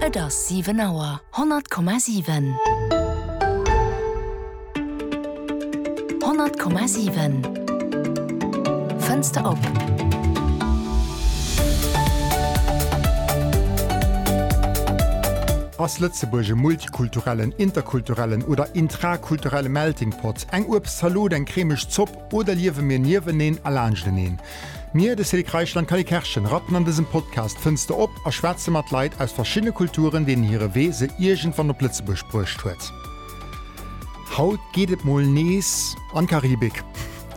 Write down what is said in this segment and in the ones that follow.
Et ass 7 Auer. 100,7. 100,7. Fënster op. Ass Lëtzebuerg e multikulturellen, interkulturellen oder intrakulturelle Melting Pot? Eng Uebstzalot, eng cremeg Zopp? Oder liewe mir nieweneen a laanschteneen? Mir, de Célic Reichel an d'Cally Kerschen, rappen an dësem Podcast d'Fënster op a schwätze mat Leit aus verschiddene Kulturen, deenen hire Wee se iergendwann op Lëtzebuerg bruecht huet. Haut geet et mol nees an d'Karibik.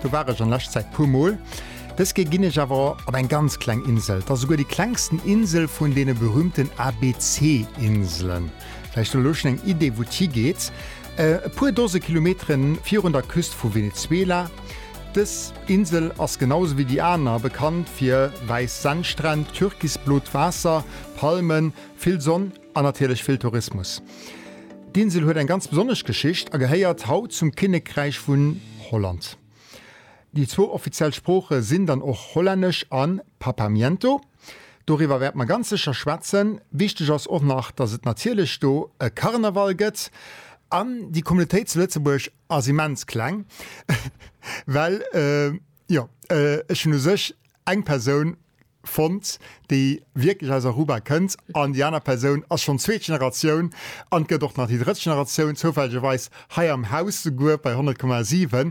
Do war ech an lescht Zäit puer mol. Dës Kéier ginn ech awer op eng ganz kleng Insel. Et ass esouguer déi klengsten Insel vun deene berühmten ABC-Inselen. Vläicht hutt der elo schonn eng Idee, wou et higeet. E puer Dose Kilometere virun der Küst vu Venezuela. Dës Insel ass genau esou wéi déi aner bekannt fir wäiss Sandstränn, türkisblot Waasser, Palmen, vill Sonn an natierlech vill Tourismus. D'Insel huet eng ganz besonnesch Geschicht a gehéiert haut zum Kinnekräich vun Holland. Déi zwou offiziell Sprooche sinn dann och Hollännesch a Papiamento. Doriwwer wäerte mer ganz sécher schwätzen. Wichteg ass och nach, dass et natierlech do e Karneval gëtt. An déi Communautéit zu Lëtzebuerg ass immens kleng, well, jo, ech hunn u sech eng Persoun fonnt, déi wierklech aus Aruba kënnt an déi aner Persoun ass schonn zweet Generatioun an gëtt och nach déi drëtt Generatioun, zoufällegerweis hei am Haus souguer bei 100,7.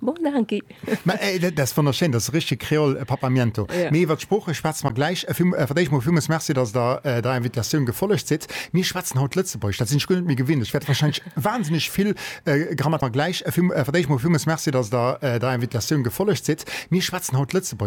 Bon, danke. Mä dat ass wonnerschéin, dat ass richteg Kreol, e Papamiento. Jo. Mee iwwer d'Sprooche schwätze mer gläich. Vill, fir d'éischt mol villmools Merci, dass Der der Invitatioun gefollegt sidd. Mir schwätzen haut Lëtzebuergesch, dat sinn ech guer net méi gewinnt. Ech wäert warscheinlech wahnsinneg vill Grammat. Mer gläich. Vill, fir d'éischt mol villmools Merci, dass Der der Invitatioun gefollegt sidd. Mir schwätzen haut Lëtzebuergesch.